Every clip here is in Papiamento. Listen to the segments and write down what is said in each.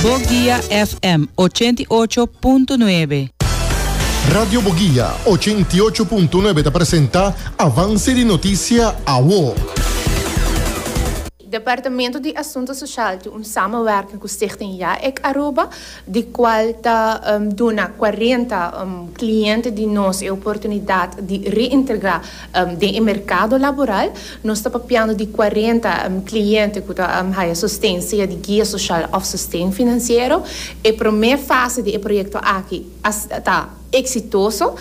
Boguia FM ochenta i ocho punto nuebe. Radio Boguia ochenta i ocho punto nuebe ta presenta Avance di Noticia Awo. Departamento di Asunto Social tin un samenwerking ku Stichting JAEC Aruba, di kual ta duna cuarenta kliente di nos e oportunidat di reintegrá Den e merkado laboral nos ta papiando di cuarenta cliente cu ta haya sosten sea di guia social of sosten financiero. E prome fase di e proyecto aki a ta exitoso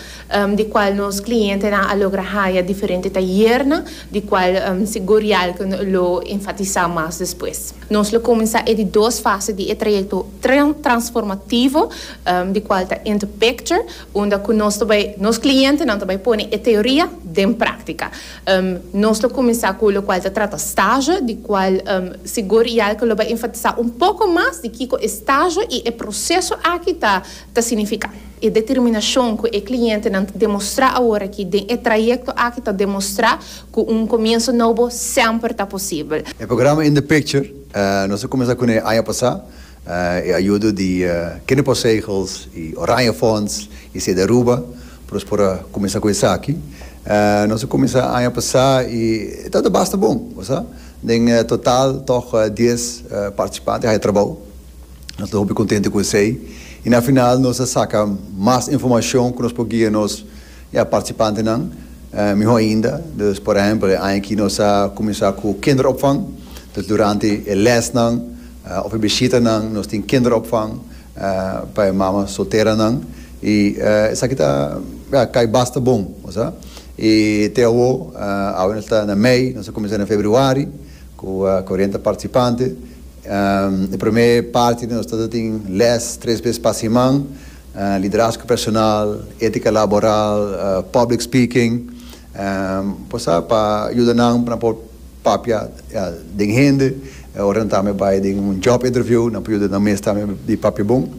di cual nos clientenan a logra haya diferente tayernan di cual sigur Yalke lo enfatisa mas despues. Nos lo cuminsa e di dos fase di e trayecto transformativo di cual ta Interpicture. unda cu nos ta bay, nos clientenan ta bay pone e teoria den practica. Nos lo cuminsa cu locual ta trata stage, di cual sigur Jelke lo bay enfatisa un poco mas di kico e stage y e proceso aki ta ta significa. E determinacion cu e clientenan ta demostra aworaki den e trayecto aki ta demostra cu un comienso nobo semper ta posibel. E programa In The Picture nos a cuminsa cu nan e aña pasa. E a yudo di Knippelsegels i Oranjefonds i siet di Aruba pa nos por a kuminsá ku esaki. Nos a kuminsá aña pasá i e tabata basta bon, bo sa. Den total tòg dies partisipante a haya trabou. Nos ta hopi kontente ku esei i na final nos a saka mas informashon ku nos por guia nos partisipantenan mihó ainda. Dus por ehèmpel e aña aki nos a kuminsá ku kinderopvang, dus durante e lèsnan. Of e bishitanan, nos tin kinderopvang pa e mama solteranan i esaki ta kai basta bon. I te awo, awe nos ta na mei, nos a kuminsá na februari ku korenta partisipante. E promé parti di nos ta tin lès tres bes pa siman, liderazgo personal, étika laboral, public speaking. Por sa pa yuda nan pa nan por papia den hende ora nan ta me bai den un job interview nan por yuda nan mes tambe di papia bon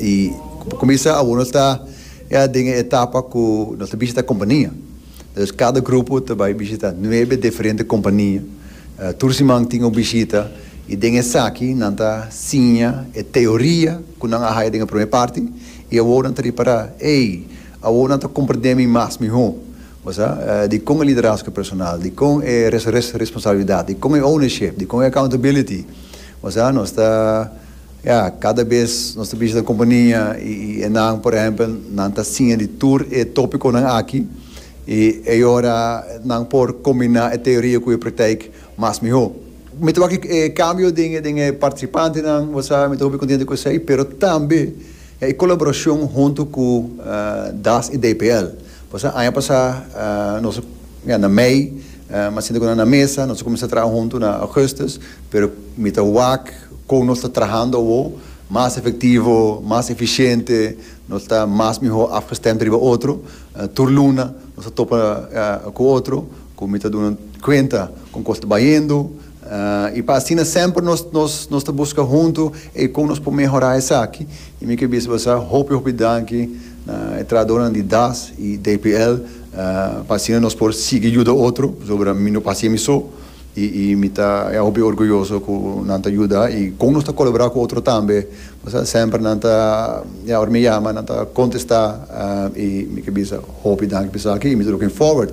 y pa cominsa awo nos ta ya den e etapa cu nos ta bishita compania dus cada grupo ta bai bishita nuebe diferente compania tur siman tin un bishita y den esaki nan ta siña e teoria cu nan a haya den e prome parti y awo nan ta ripara ey. Awor nan ta komprendé mi mas mihó, bo sa, dikon e liderasko personal, dikon e responsabilidat, dikon e ownership, dikon e accountability, bo sa. Nos ta, ya, kada bes nos ta bishita un kompania i nan, por ehèmpel, nan ta siña di tur e tópikonan aki i ei ora nan por kombiná e teoria ku e praktijk mas mihó. Mi ta wak e kambio den e partisipantenan, bo sa, mi ta hopi kontento ku esei, pero tambe E colaboracion hunto cu das y DPL. Pasobra aña pasa nos a na mei mas sinta cu nan na mesa, nos a cuminsa traha hunto na augustus, pero mi ta wak con nos ta trahando awo mas efectivo, mas eficiente, nos ta mas miho afgestemd riba otro, tur luna nos ta topa cu otro cu mi ta duna cuenta con cos ta bayendo, I pa asina semper nos nos ta buska huntu eikon nos por mehorá esaki. I mi ke bisa bo sa hopi hopi danki na e trahadornan di das i DPL pa asina nos por sigui yuda otro pasobra mi no p'hasi mi so i mi ta ya hopi orguyoso ku nan ta yuda i kon nos ta kolaborá ku otro tambe pasobra semper nan ta ya ora mi yama nan ta kontestá i mi ke bisa hopi danki pa esaki i mi ta looking forward